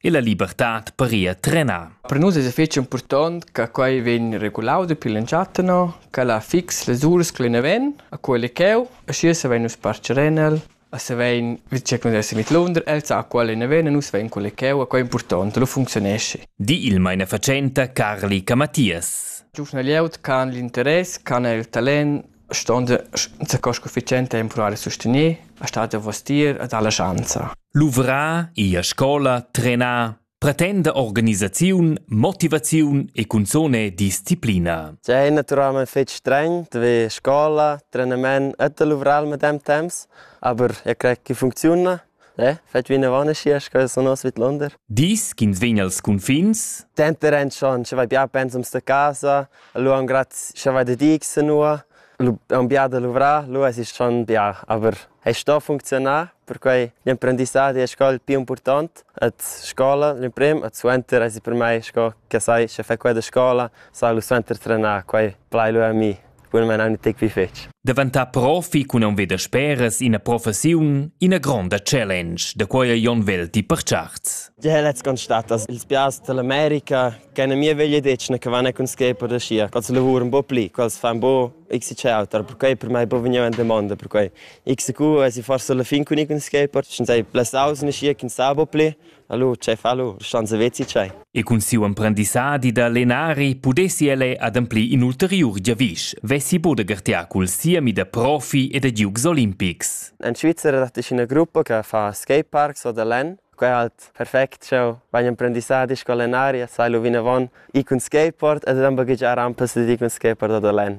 e la libertad paria trenà. Per nus es fich impurtant che quai vegn regulau dapi l'entschatta no, che la fix las uras che ne ven a quelle cheu, e schi se vein nus parcher en el, a se vein, vi c'è che nus mit Lunder, el sa quelle ne ven e nus vein quelle cheu, a quai è important, lo funzionesci. Di il meine Vercenta Carli Camatias. Giufna Lieut can l'interess, can el talent Stond sco sufficiente a impurar e sustener, ha stat davos tier ed ha la schanza. Luvrar, ir a scola, trenar, pretenda organisaziun, motivaziun e cunzone disciplina. È naturalmente fitg streng, wie Scuola, Trainement, etwa luvrar mit dem Temps, aber ich kriege funziona. Eh, fetg vinavon e schias che sun oz vidlunder. Dis ch'ins vegn als cunfins? Denter en schon, sche vai bia pensums da casa, lu han graz, sche vai da dig senua, lu han bia da luvrar, lu es isch schon bia, aber è sto funzionar, perquei l'emprendissadi è sco il più important at scola, l'emprim, at suenter es per mai sco che sai, sche fai quella scola, sai lu suenter trenar, quei plai lu a mi. Buonmain aunc detg pli fetg. Daventar profi cun aunc veder speras ina professiun, ina gronda challenge, da quai Jon Vel ti percharts. Ja, let's constatar, dass ils piars dell'America keine mir veglie decene che vanno con schepo da scia. Quals lavor un po' pli, quals fan bo x c auter, perquei per mai po vegniu in domanda, perquei x q e si forse la fin con con schepo, schon sei plus aus ne scia che sa bo pli, Hallo, chef, hallo, schon savezi tgei? E cun siu emprendissadi da lenari pudessi el ademplir in ulteriur giavisch, vessi Bodegartia cul siemi da profi e da giugs olimpics. In Svizzera dat ina gruppa che fa skateparks o da len. Quei è halt perfect, sch'eu vagn emprendissadi sco lenaria, sai lu vinavon, i cun skateboard ed dann baghegiar rampas ed i cun skateboard o da len.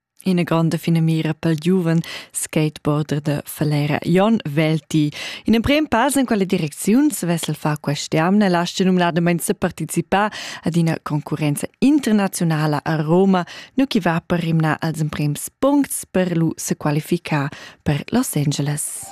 Ina grande finamira pel giuven skateboarder da Falera Jon Velti. In emprem pass in quella direcziun svessel fa quest'jamna lascia numnadament se participar ad una concorrenza internazionala a Roma, nu chi va per rimnar als emprems puncts per lu se qualificar per Los Angeles.